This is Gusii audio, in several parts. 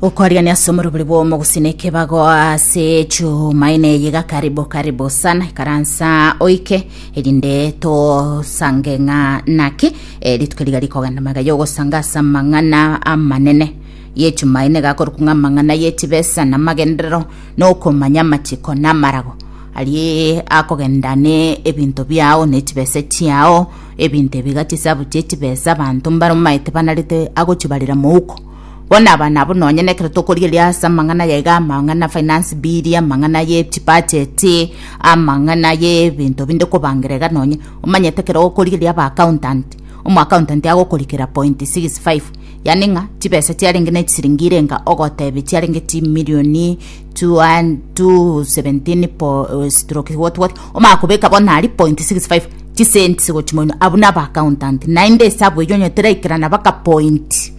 ukwariani ase omorobori bw'omogusi na ekebago ase chumaine eye iga karibu karibu sana ikaransa oike erinde tosange ng'a naki eh, rituko riga rikogenda maiga yogosanga ase amang'ana amanene yechumaine gakorokwa ng'a amang'ana yechibesa na amagenderero na okomanya amachiko na amarago arie akogenda ne ebinto biao ne chibesa chiao Ebinto ebi iga chisabu chie chibesa abanto mbaromaete banarete agochibarera mouko. Bono aba nabo nonya nekero tokorieria ase amang'ana aya iga amang'ana finance bill, amang'ana ye chibudget, amang'ana ye ebinto binde kobangera iga nonya omanyete ekero okorieria aba accountant, omo accountant agokorikera point six five, yaani ng'a chibesa chiarenge ne chisiringi irenga ogotebia chiarenge chimirioni two hun- two seventeen po- stroke what what omanya kobeka bono aria point six five. chisenti gochia moino abwo naba accountant naende esabu eyio onye teraikerana baka point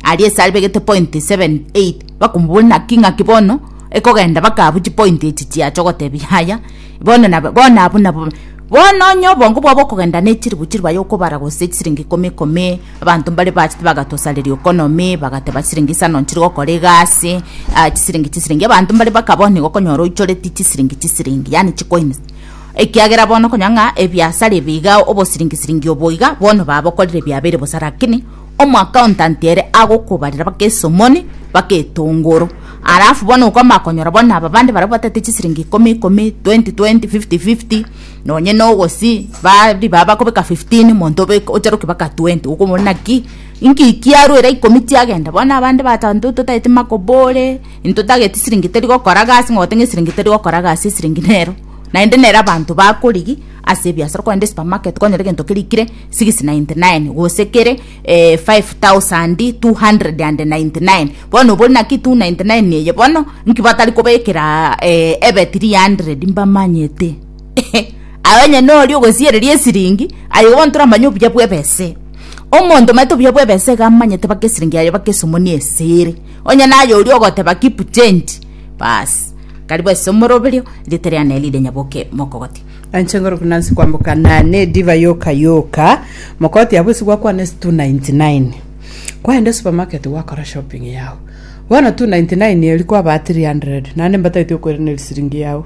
aria ase aribegete point 7 8 bakomobori naki ng'aki bono ekogenda baka abwo chipoint echi chiacha ogotebi yaya bono nabo bono abwo nabo bono onye obongo bwabo okogenda na echiribu chiribu aye okobara gose chisiringi ikomi ikomi abanto mbare bachete bagatosareria okonomi bagateba chisiringi isa nonya chiri gokora egasi ah chisiringi chisiringi abanto mbare baka bono igo okonyora oichoreti chisiringi chisiringi yaani chikoins. Ekiagera bono konya ng'a ebiasara ebi igao obosiringi-siringi obo iga bono babokorire biabeire bosa rakini omwakauntanti ere agokobarera bake esomoni bake etongoro alafu bono okomanya konyora bono aba bande baria batete chisiringi ikomi ikomi twenti twenti fifti fifti nonye na ogosii ba ribaga bakobeka fiftin monto obeke ocharoki baka twenti okomorora naki inki kiarwa era ikomi chiagenda bono abande batanto totaete makobore. Intotageti siringi teri gokora gasi, ng'ogote ng'a esiringi teri gokora gasi, esiringi nero. Naende nere abanto bakorigi ase ebiasara, okogenda esupermarket konyora egento keria kire six ninety nine gose kere eh five thousand two hundred and ninety nine, bono obori naki two ninety nine eye bono, nki batari kobekeraa eh ebe three hundred mbamanyete ehe. Aye onye noria ogosiereria esiringi, aye bono toramanye obuya bwa ebesa eye. Omonto omanyete obuya bwa ebesa iga amanyete baka esiringi yaye baka esomoni ase ere. Onye naye oria ogoteba Kipchenti, baasi, karibu ase omoroberio, erieta riane rire Nyaboke Mokogoti. Anche ngoro buna nse kwamboka na nediva yoka yoka mokoti abwo isi gwakwana ase 299 kwaenda supermarket gwakora shopping yao bono 299 erio kwaba 300 naende mbatagete okoirana erisiringi yao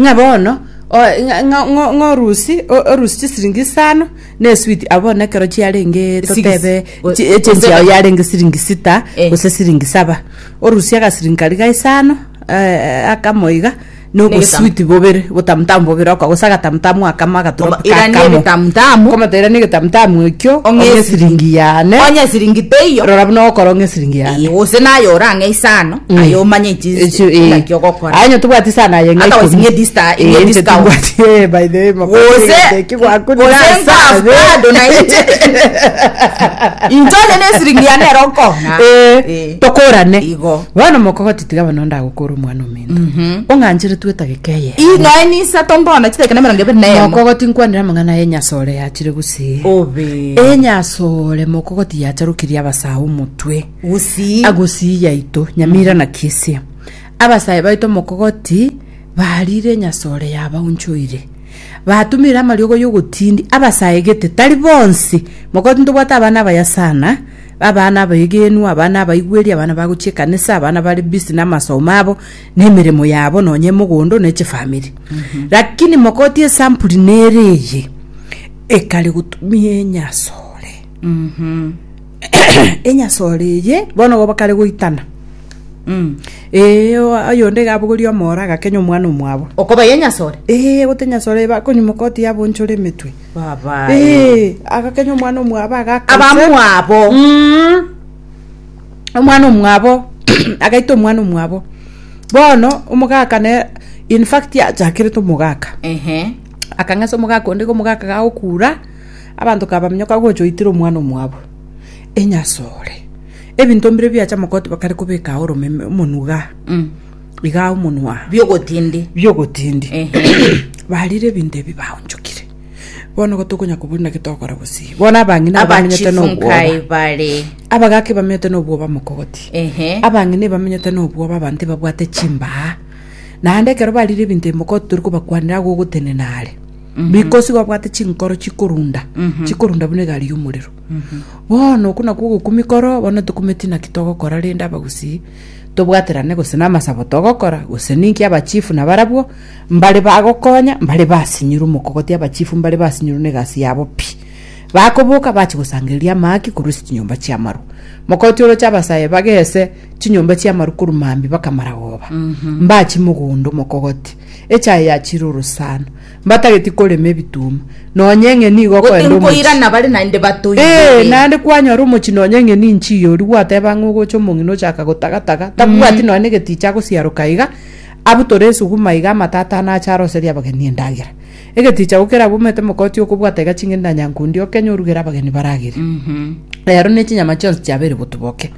Ng'a bono o- ng'a- ng'a- ng'o- ng'orusi o- orusi chisiringi isano na eswiti abo bono ekero chiarenge totebe Sigisi. chi- echenji yao yarenge siringi sita Eh. gose siringi saba orusie agasiringi karia ga isano eh, akamo iga na Negetamo. oboswiti bobere botamutamu bobere oka gose agatamutamu akamo agatoroki Oba- irani kakamo egetamutamu. Okomata irani egetamutamu ekio Ong'e ong'e esiringi. esiringi yane onye siringi teiyo rora buna okorong'a esiringi yane gose naye orang'e isano aye omanye echi Echi, eh. naki ogokora Aye nyotobwati sana aye ng'a Otherwise ikomi. ng'e dista- Eh, ng'e inche discount. tibwati, eh, by the way, makosa Gose- igateki gwaku ni gose nasa, nkafu eh. bado na inche. Inche onye ne esiringi yane ero nkona. Eh, Eh. tokorane Igo. bono mokogoti tiga bono ndagokora omwana omento ong'anchere twetageka eye Ii noe ni isato nkona chiteke na emerongo ebere na emo. mokogoti nkwanire amang'ana ya enyasore yachire gusii Obe. enyasore mokogoti yacharokirie abasae omotwe Gusii. Agusii yaito Nyamira na Kisia. Abasae baito Mokogoti barire Nyasore yabaunchoire. Batumire amariogo y'ogotindi abasae gete tari bonsi. Mogoti ntobwate abana abaya sana, abana abaegenwa, abana abaigweri, abana bagochia ekanisa, abana bare busy namasomo abo, na emeremo yabo nonye emogondo na echifamiri. Lakini Mogoti esampuli nere eye, ekare gotumia enyasore. enyasore eye bono igo bakare goitana Mm. ee o- oyonde iga abogorie omora agakenya omwana omwabo okoba ye nyasore ee gote nyasore iba konyomoka oti yabonchore emetwe baba ee agakenya omwana omwabo agakasa abamwabo Mm. omwana omwabo agaita omwana omwabo bono omogaka ne infact achakerete omogaka ehe akang'esa omogaka onde iga omogaka gagokura Abanto kabaminyoka agocha oitire omwana omwabo enyasore. Ebinto mbire biacha mogoti bakare kobeka ao oromeme omonuga. Iga ao omonwa. biogotindi biogotindi barire ebinto ebi baonchokire bono igo tokonya kobori naki tokora gose bono abang'ina aba bamenyete abachifu nobwoba nkae bare abagaka bamenyete nobwoba mogoti Ehe. abang'ina ebamenyete nobwoba abanto ebabwate chimbaa naende ekero barire ebinto ebi mogoti tori kobakwanera agogotenena are bikosigwa bwate chinkoro chikorunda chikorunda buna egari y'omorero bono okwo nakwo ogokwa mikoro bono tokumeti naki togokora rende abagusii tobwaterane gose na amasabo togokora gose ninki abachifu nabarabwo mbare bagokonya mbare basinyirwe omokogoti abachifu mbare basinyirwe na egasi yabo pi bakoboka bachi gosangereria amaaki korwa ase chinyomba chi'amarwa mokoti oroche abasae bagese chinyomba chi'amarwa korwa mambia mpaka maragoba mbachi mogondo omokogoti echaye ya chiruru sana, mbatageti korema ebituma, nonya eng'eni igo Gose okoenda omochie. nkoirana bare naende Ee, batoigere. naende kwanyora omochie nonya eng'eni inchie iye oria gwateba ng'a ogocha omong'ina ochaka gotagataga, tabwati nonya negetiicha agosiaroka iga, abutore esuguma iga amatatane ache aroserie abageni endagera. Egetiicha gokera abwo omanyete mokoti okobwata iga ching'eni na nyankundi okenye orugere abageni baragere. Rero ne chinyama chionsi chiabeire botuboke.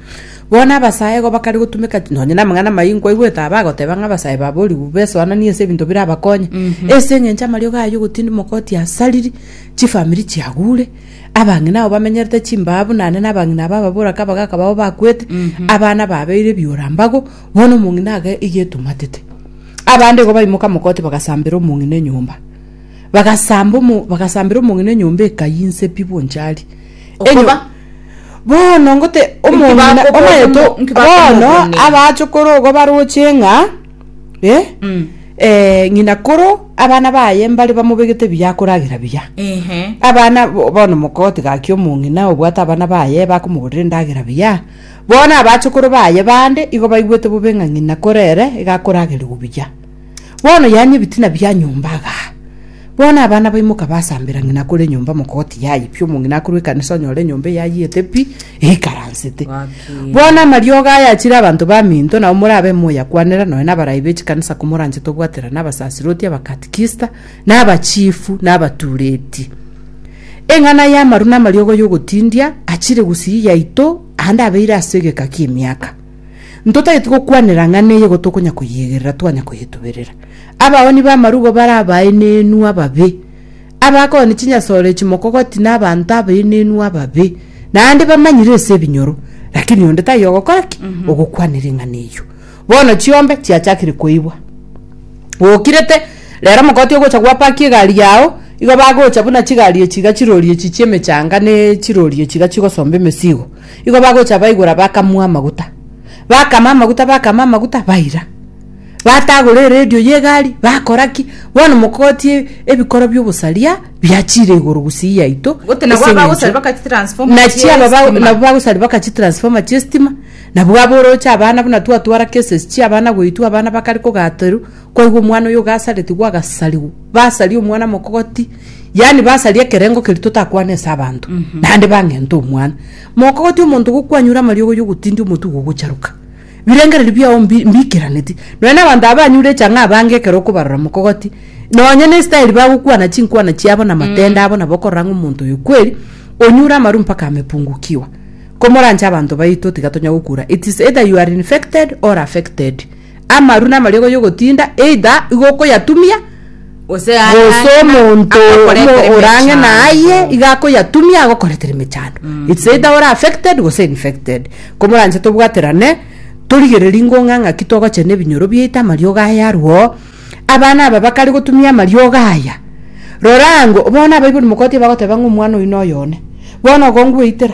Bono abasae igo bakare gotumeka chi- nonye namang'ana amayia nkwaigwete aba agoteba ng'a abasae babo ribu besoananie ase ebinto birabakonye. Ase eng'encho amariogo aye ogotindi mogoti asariri, chifamiri chiagure, abang'ina abo bamenyerete chimbaa buna ane nabang'ina aba ababora kaba gaka babo bakwete, abana babeire ebiora mbago, bono omong'ina age iga etumatete. Abande igo baimoka mogoti bagasambera omong'ina enyomba. Bagasamba omo- bagasambera omong'ina enyomba ekayia inse pi bwonchari. Enyo- Okoba. Bono ngote omong'ina bakoboria omayeto omo- nki bono bakomobonia? abachokoro ogo baroche ng'a eh, Mm. eh, ng'ina koro abana baye mbare bamobegete buya akoragera buya Ehe. abana bo- bono mokotiga gaki omong'ina obwate abana baye bakomogorera endagera buya bono abachokoro baye bande igo baigwete bobe ng'a ng'ina korere iga akoragerigwa buya Bono yaanyu ebitina bia nyomba agaa. Bono abana baimoka basambera ng'ina akore enyomba mokoti yaye pi, omong'ina akorwa ekanisa onyore enyomba eyayete pi, eikaransete. Gaki. Bono amariogo aya achire abanto baminto, nao morabe moyakwanera nonya nabarai bechikanisa komoranchete obwatera na abasasiroti, abakatikista, na abachifu, na abatureti. Eng'ana y'amaru na amariogo y'ogotindia achire gusii yaito aande abeire ase egeka ki'emiaka. Ntotagete gokwanera ng'ana eye igo tokonya koyegerera twanya koyetuberera. Abaoni b'amarubo bare abaenenu ababe, abakooni chinyasore echi mokogoti na abanto abaenenu ababe, naende bamanyire ase ebinyoro, lakini onde taiyo ogokora ki? Ogokwanera eng'ana eyio. Bono chiombe chiachakire koibwa. Gokirete, rero omokoti ogocha gwapaki egari yao, igo bagocha buna chigari echi iga chirori echi chi'emechanga ne chirori echi iga chigosomba emesigo. Igo bagocha baigora bakamua amaguta. Bakama amaguta bakama amaguta baira. Batagora eredio ya egari bakora ki? Bono mokogotie ebikoro bia obosaria biachire igoro gusii yaito. Goti nabo ase aba eng'encho- gosari baka chitransformer Nachi chia aba ba- estima. nabo bagosari baka chitransformer chia estima, nabwo abwo oroche abana buna twatwara cases chia abana goitwa abana bakare kogaterwa, Kwaigwa omwana oyo ogasaretigwe agasarigwa, basaria omwana mokogoti, yaani basaria ekerengo keria totakwana ase abanto, naende bang'enta omwana. Mokogoti omonto gokwanyure amariogo ya ogotindia omotugo ogocharuka. Birengererio biao mbi- mbikeraneti. Nonya na abanto aba banyure echang'a abange ekero okobarora mokogoti, nonya na estyle bagokwana chinkwana chiabo na amatende abo nabo okorora ng'a omonto oyo kweri onyure amaru mpaka amepungukiwa. Komoranche abanto baito tiga tonya gokura. It is either you are infected or affected. Amaru namariogo y'ogotinda either igo okoyatumia, Gose aye gose ang'e na- omonto omo akokoretera orang'e emechando. naye iga akoyatumia agokoretera emechando its either ore affected gose infected komoranche tobwaterane torigererie ngong'a ng'aki togochena ebinyoro biaito amariogo aye arwoo abana aba bakare gotumia amariogo aya rora ango bono abaibori mogotiga bagoteba ng'a omwana oyo noyo one bono ogo ngweitera.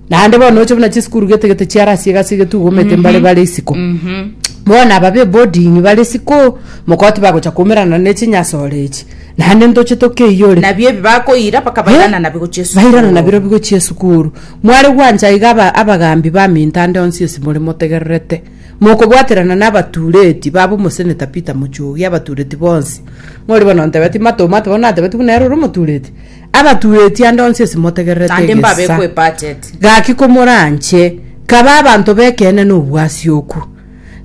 Naende bono oche buna chisukuru gete gete chiare asie gasi getugomete mbare bare isiko bono aba be boarding bare isiko mokoti bagocha kumerana ne chinyasore echi naende ntoche tokeiyore nabio ebi bakoira mpaka bairana nabio gochia esukuru. bairana nabiro bigochia esukuru mware gwancha iga aba- abagambi ba minto ande onsi onsi more motegererete mokobwaterana na abatureti baba omoseneta peter mochoge abatureti bonsi ng'ori bono ntebeti matomato bono natebeti buna ere ore omotureti Abatueti ande onsi esimotegererete Naende egesa mbabekwe budget. gaki komoranche, kabe abanto b'ekeene nobwasioku.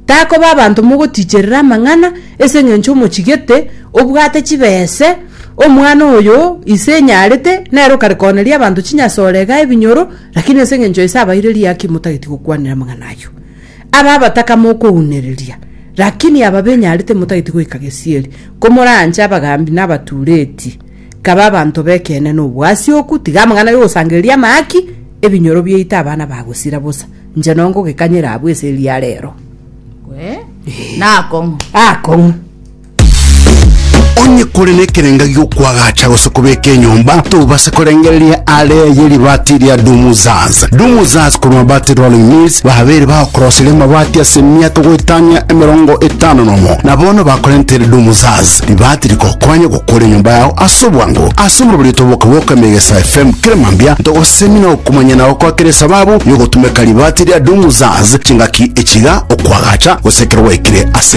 Takoba abanto mogotiicherera amang'ana ase engencho omochigete obwate chibese, omwana oyo ise enyarete, nere okare kooneria abanto chinyasore igaa ebinyoro, lakini ase engencho ise abaireri aki motageti gokwanera amang'ana ayio. Aba abataka mokounereria, lakini aba benyarete motageti goika gesieri, komoranche abagambi na abatuureti. Kaba abanto b'ekeene nobwasi oku, tiga amang'ana y'ogosangereria amahaki, ebinyoro biaito abana bagosira bosa. Inche nongogekanyera abwo ase eria rero. Gwe, nakong'u. Akong'u. Onye kore nekerenga giokwagacha gose kobeka enyomba, tobase korengereria are ye ribati ria Dumuzaz. Dumuzaz korwa Mabati Rolling Mills babeire bagokoroseria amabati ase emiaka goetania emerongo etano nomo, na bono bakorentere Dumuzaz. Ribaati rikokonya gokora enyomba yao ase obwango. Ase omobe rietwa Boka Boka Emegesa FM kera mambia ntogosemi na okomanyana gokwa kera esababu yogotumeka ribaati ria Doom Zaz chingaki echiga okwagacha gose ekero gwaikire ase